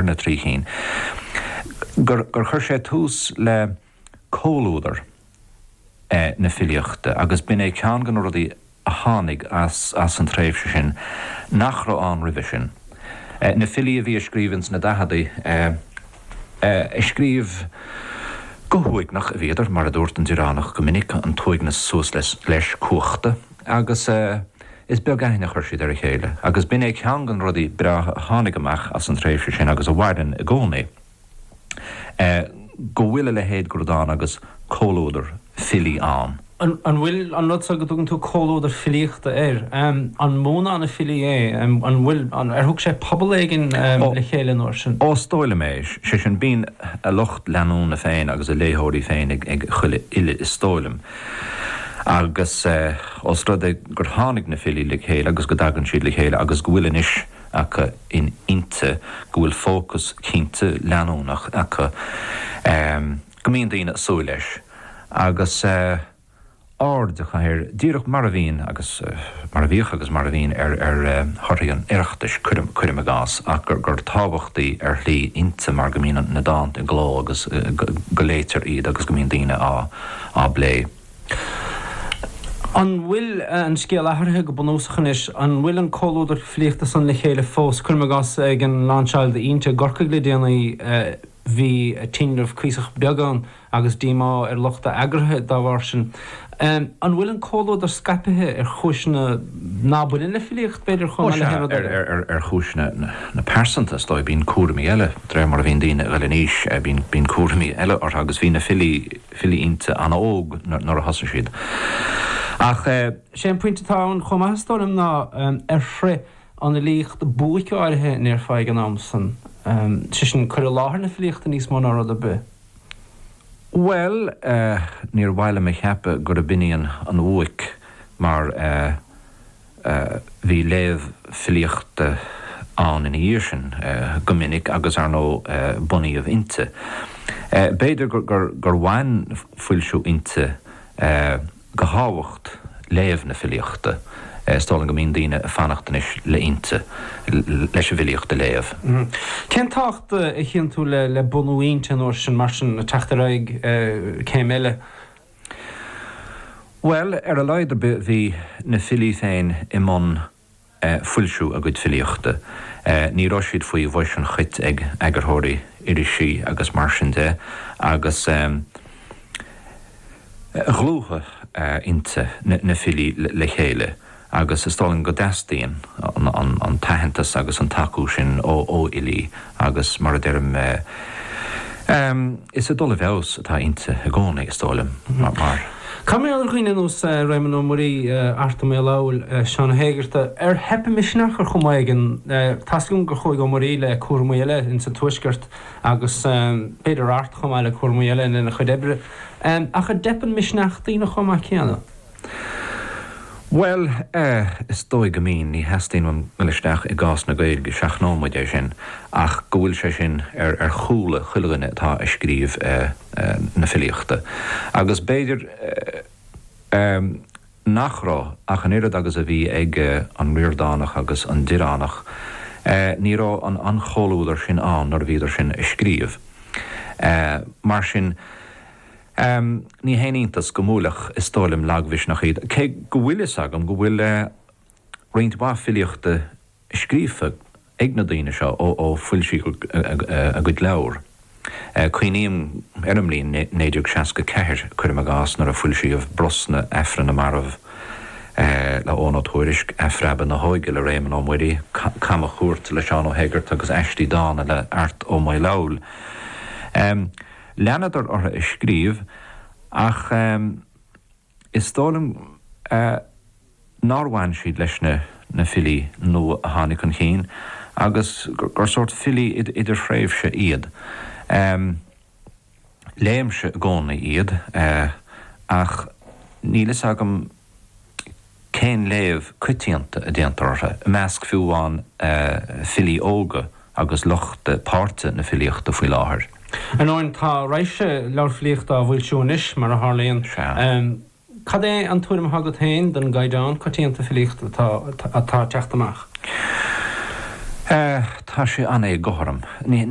ar na trí chinn, gur chuir sé tús le comhluadar na filíochta agus b'in é ceann de na rudaí a tháinig as an tréimhse sin nach raibh ann roimhe sin. Na filí a bhí ag scríobh ins na daicheadaí, ag scríobh go huaigneach a bhíodar, mar a dúirt an Direánach go minic, an t-uaigneas suas leis, cumhachta agus. Is beag aithne a chuir siad ar a chéile agus b'in é ceann de na rudaí breátha a tháinig amach as an tréimhse sin agus a mhaireann i gcónaí, go bhfuil a leithéid de rud ann agus comhluadar filí ann. An bhfuil an rud seo go dtugann tú comhluadar filíochta air, an mó ná na filí é, an bhfuil, ar thug sé pobal éigin le chéile an uair sin? Ó, is dóigh liom é, sé sin, bíonn a lucht leanúna féin agus a léitheoirí féin ag chuile fhile, is dóigh liom. Agus ós rud é gur tháinig na filí le chéile agus go dtagann siad le chéile agus go bhfuil anois acu in Innti go bhfuil fócas cinnte leanúnach acu go mbíonn daoine ag súil leis agus aird acu air díreach mar a bhíonn agus mar a bhíodh agus mar a bhíonn ar thorthaí an Oireachtais, cuirim i gcás, ach gur tábhachtaí ar shlí Innti mar go mbíonn na dánta i gcló agus go léitear iad agus go mbíonn daoine á. á bplé. An bhfuil an scéal athraithe go bunúsach anois? An bhfuil an comhluadar filíochta san le chéile fós? Cuirim i gcás, ag an lainseáil d'Innti i gCorcaigh le déanaí, bhí tinreamh cuíosach beag ann agus díomá ar lucht a eagraithe dá bharr sin. An bhfuil an comhluadar scaipithe ar chúiseanna ná baineann le filíocht, b'fhéidir, chomh maith le haon rud eile? Sea, ar chúiseanna na pearsanta, is dóigh. Bíonn cúraimí eile, de réir mar a bhíonn daoine ag dul in aois, bíonn cúraimí eile orthu agus bhí na filí, filí Innti an-óg nuair a thosaigh siad. Ach sé an pointe atá ann chomh maith, is dóigh liom, ná ar shroich an fhilíocht buaic áirithe an ndéarfá ag an am san, sé sin, cur i láthair na filíochta níos mó ná rud ar bith. Bhuel, níor mhaith liom a cheapadh gurb in í an bhuaic mar. Bhí léamh filíochta ann ina dhiaidh sin go minic agus, ar ndóigh, bunaíodh Innti. B'fhéidir gur bhain foilsiú Innti de thábhacht léamh na filíochta, is dóigh liom go mbíonn daoine ag fanacht anois le Innti leis an bhfilíocht a léamh. Cén tábhacht a chíonn tú le bunú Innti an uair sin, mar sin, le teacht ar aghaidh céim eile? Bhuel, ar a laghad ar bith bhí na filí féin i mbun foilsiú a gcuid filíochta, ní raibh siad faoi bhois an chait ag eagarthóirí irisí agus mar sin de agus dhlúthaigh Innti na filí le chéile. agus is dóigh liom go dteastaíonn an t-aitheantas agus an tacú sin ó fhilí agus, mar a deirim, is ag dul i bhfeabhas atá Innti i gcónaí, is dóigh liom, mar. Cad mar gheall ar dhaoine ar nós Réamonn Ó Muirí, Art Ó Maolfabhail, Seán Ó hÉigeartaigh, ar theip a misneach ar chuma éigin. Tá 'fhios agam gur chuaigh Ó Muirí le cúramaí eile ins an Tuaisceart agus b'fhéidir Art chomh maith le cúramaí eile lena chuid oibre, ach an dteipeann misneach daoine chomh maith céanna? Bhuel eh, is dóigh go mbíonn, ní theastaíonn uainn dul isteach i gcás na Gaeilge, seachnóidh muid é sin, ach go bhfuil sé sin ar, ar chúla chuile dhuine atá a' scríobh eh, na filíochta agus b'fhéidir eh, eh nach raibh ach an oiread agus a bhí ag eh an Ríordánach agus an Direánach eh ní raibh an, an chomhluadar sin ann nuair a bhíodar sin a' scríobh eh mar sin. Ní haon iontas go mbuailfeadh, is dóigh liom, lagmhisneach iad, cé go bhfuil fhios agam go bhfuil roinnt mhaith filíochta scríofa ag na daoine seo ó foilsíodh a gcuid leabhar. Cuimhním ar an mbliain 1964, cuirim i gcás, nuair a foilsíodh Brosna, Aifreann na Marbh le Eoghan Ó Tuairisc, Athphreabadh na hÓige le Réamonn Ó Muirí, Camachuairt le Seán Ó hÉigeartaigh agus Aistí Dána le Art Ó Maolfabhail. Leanadar orthu ag scríobh ach is dóigh liom nár bhain siad leis na filí nua a tháinig chun cinn agus gur sórt filí idirthréimhse iad. Léimse i gcónaí iad ach níl fhios agam cén léamh coitianta a déantar orthu i measc fiú amháin filí óga agus lucht páirte na filíochta faoi láthair? Ar ndóin, tá raidhse leabhar filíochta á bhfoilsiú anois, mar a tharlaíonn. Sea. Cad é an tuairim atá agat féin den gcaighdeán coitianta filíochta atá ag teacht amach? Tá sé an-éagothrom. Ní.